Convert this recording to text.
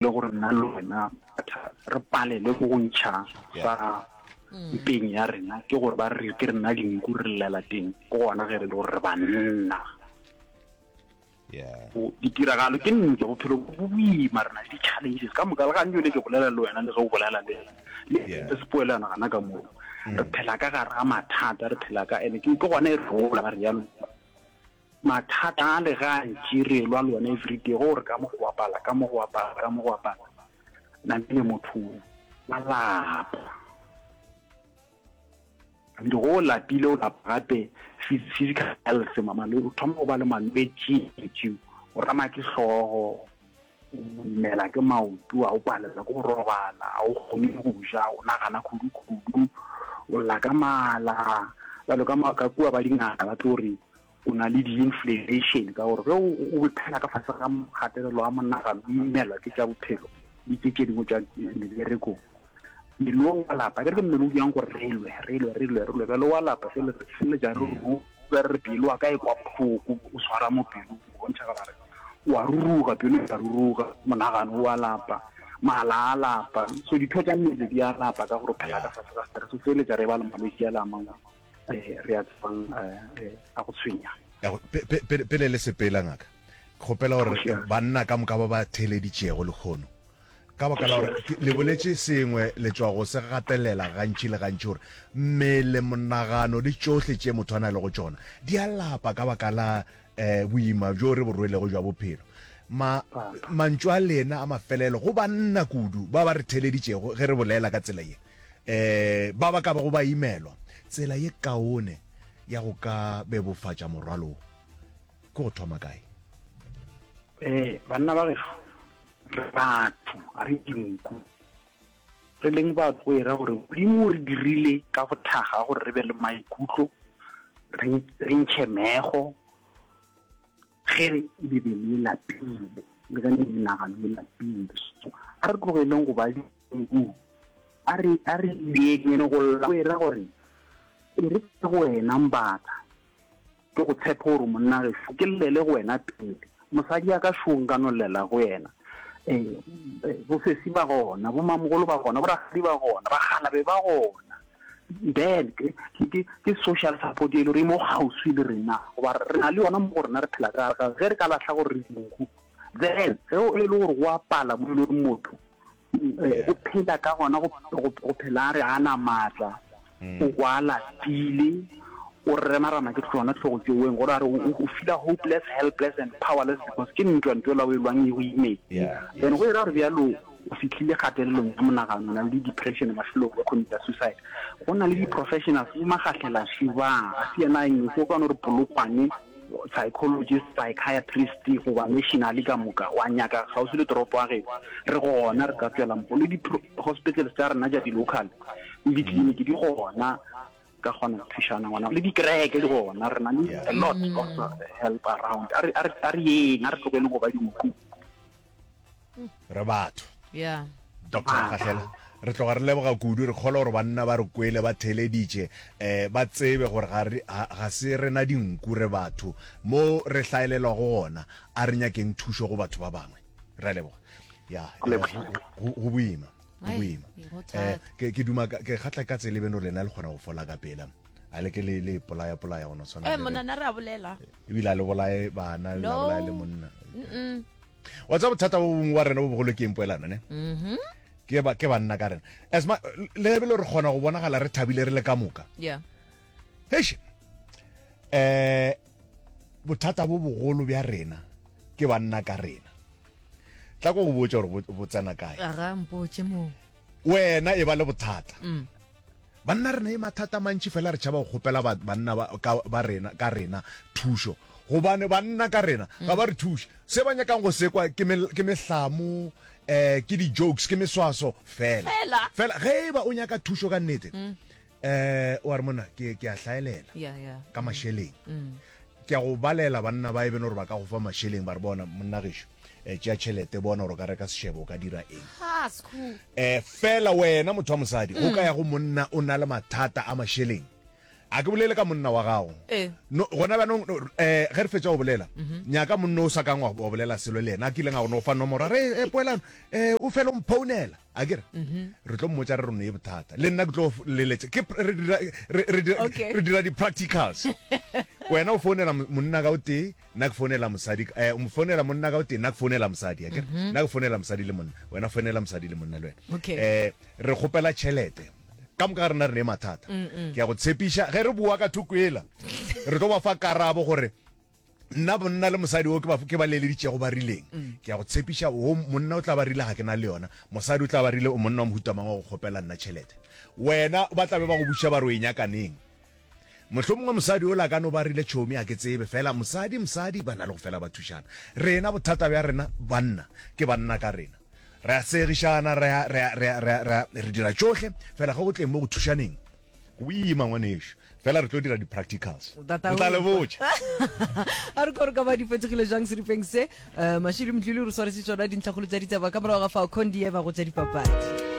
le gore nna le wena re palelwe ke go ntšha sa mpeng ya rena ke gore ba re ke rena dinku re llela teng ke gona ge re le gore re banna ditiragalo ke nnete bophelo bo boima rena le di-challenges ka moka le gane jone ke bolela le wena le ge o bolela le le se poelana gana ka moo mm. re phela ka gare ga mathata re phela ka ene ke gone e re gola ba re jalo Mathata a le gantši re elwa le one everyday go gore ka mo go bapala, ka mo go bapala, ka mo go bapala. Na le motho wa lapa. And go lapile o lapa gape physical health mamalo o thoma go ba le malwetši tšeo. O rama ke hlogo, o imela ke maoto, a o palela ke go robala, a o kgone go ja, o nagana khudu-khudu, o lla ka mala. Jalo ka kua ba dingaka ba tlo re o na le di-inflammation ka gore ge o phela ka fase ga kgatelelo a monagano o imelwa ke tša bophelo le tse tše dingwe tša meberekong mmele o wa lapa ke re ke mmele o jang gore re lwe re lwe re lwe re lwe bjale wa lapa se le ja re ruka re pelo wa ka e kwa bohloko o swara mo pelo o bontšha ka gare wa ruruga pelo ya ruruga monagano wa lapa mala a lapa so ditho tša mmele di a lapa ka gore phela ka fase ga stress o feleletsa re ba le malwetse a le a mangwe eh, re a tsebang eh, eh, a go tshwenya pele le sepela ngaka kgopela gore banna ka moka ba ba theeleditšego lekgono ka baka la gore le boletse sengwe le tswa go se gatelela gantši le gantši gore mmele monagano le tsohle tše motho a na le go tsona di a lapa ka baka la um boima bjo re bo rwelego jwa bophelo ma mantšu a lena a mafelelo go banna kudu ba ba re theleditšego ge re bolela ka tsela ye um ba ba ka bago ba imelwa tsela ye kaone ya go ka bebofatša morwalo wo ke go thoma kae um banna ba geso re batho ga re dinku re leng ba tloera gore modimo o re dirile ka go thaga gore re be le maikutlo re ntšhe mego Ge Bibele e lapile, le ge le menagano e lapile, a re tlogeleng go ba dinku. A re, a re lekenyeng go lla, go e ra gore, E re ke go wena, Mbata. Ke go tshepe gore monnagešo, ke llele go wena pele. Mosadi ya ka, šo nka no llela go yena. Ee, bosesi ba gona, bomamogolo ba gona, borakgadi ba gona, bakgalabe ba gona. Dad, ke, ke, ke, ke social support e le gore e mo gauswi le rena goba re na le yona mo go rena re phela ka ga ge re ka lahla gore re dinku then ge o e le gore go a pala mo e le gore motho eh, o phela ka gona go go- go phela a re a na maatla Mm. o kwa lapile o remarama ke tsona tlhogo tseweng gore a re o o fila hopeless helpless and powerless because ke ntwa ntwa la o e lwang e o imeng Yeah, then yes. go e ra gore bjalo o fihlile kgatelelong ya monagano, o na le di depression mafelong go commita suicide. Go na le di professionals bo magahlela shubang, a se yena eng se o ka no re polokwane psychologist, psychiatrist goba nationally ka moka wa nyaka kgauswi le toropo ya geno. Re gona re ka tswela mpo le di hospitals tsa rena ja di local le di clinic di gona ka kgona go thušana ngwana le dikereke di gona re na le a lot of help around a re a re a re yeng a re tlogele go ba dinku re batho yeah doctor gahlela re tloga re leboga kudu re kgole gore banna ba re kwele ba theleditše um ba tsebe gore ga se rena dinku re batho mo re hlaelelwa go gona a re nyakeng thušo go batho ba bangwe re leboga ya go boima go boima eh, ke duma ke kgatla ka tsele beno lena le kgona go fola ka pela a le ke le le polaya polaya gona tshwana eh monana re a bolela ebile a le bolaye bana le bolaye le monna wa tsa bothata bo bongwe wa rena bo bogolo ke eng poelano ne ke ba ke banna ka rena as ma le be le re kgona go bonagala re thabile re le ka moka yeah eish eh bothata bo bogolo bja rena ke banna ka rena tla ko go botsa gore bo- bo tsena kae aga mpotše moo wena e ba le bothata Banna re na le mathata a mantši fela re tšhaba go kgopela banna ka rena thušo gobane banna ka rena ga ba re thuše. Se ba nyakang go sekwa ke mehlamo um ke di-jokes ke meswaso fela fela ge e ba o nyaka thušo ka nnete um wa re monna ke a hlaelela ka mašeleng Ke a go balela banna ba e beno gore ba ka go fa mašeleng ba re bona monnagešu eh, tšea tšhelete bona gore o ka reka sešebo o ka dira eng eh, fela wena motho wa mosadi go ka ya go monna o na le mathata a mašeleng a ke bolele ka monna wa gago eh. no gona bjanong um eh, ge re fetsa go bolela mhm. nyaka monna o sa kang wa bolela selo le yena a kileng a go no fa nomoro re e poelano um o fela o mphounela a kere mhm. re tlo mmotsa re rone ye bothata le nna ke tlo leletsa ke re dira di-practicals wena o founela monna ka o tee nna ke founela mosadi eh, o founela monna ka o tee nna ke founela mosadi a kere mhm. nna ke founela mosadi le monna wena founela mosadi le monna le wena um eh, re kgopela tšhelete ka moka ga rena re ne mathata ke ya go tshepiša ge re boa ka thoko ela re tlo ba fa karabo gore nna bonna le mosadi o ke ba leleditšego ba rileng mm. ke ya go tshepiša o monna o tla ba rile ga ke na le yona mosadi o tla ba rile o monna wa mohutamangwe go kgopela nna tšhelete wena ba tlabe ba go buša ba re o e nyakaneng motlho mongwe mosadi o la ka no ba rile tšhomi a ke tsebe fela mosadi mosadi ba na le go fela ba thušana rena bothata bja rena banna ke banna ka rena re a segišana re dira tšohle fela ge go tleng mo go thušaneng Go ima ngwanešu, fela re tlo dira di-practicals. Re tla le botša. A re kore ka ba di fetogile jang seripeng se. Eh, Mashiri Mdluli re swaretse tsona dintlhakgolo tsa ditaba ka morago ga fao Condieva go tša dipapadi.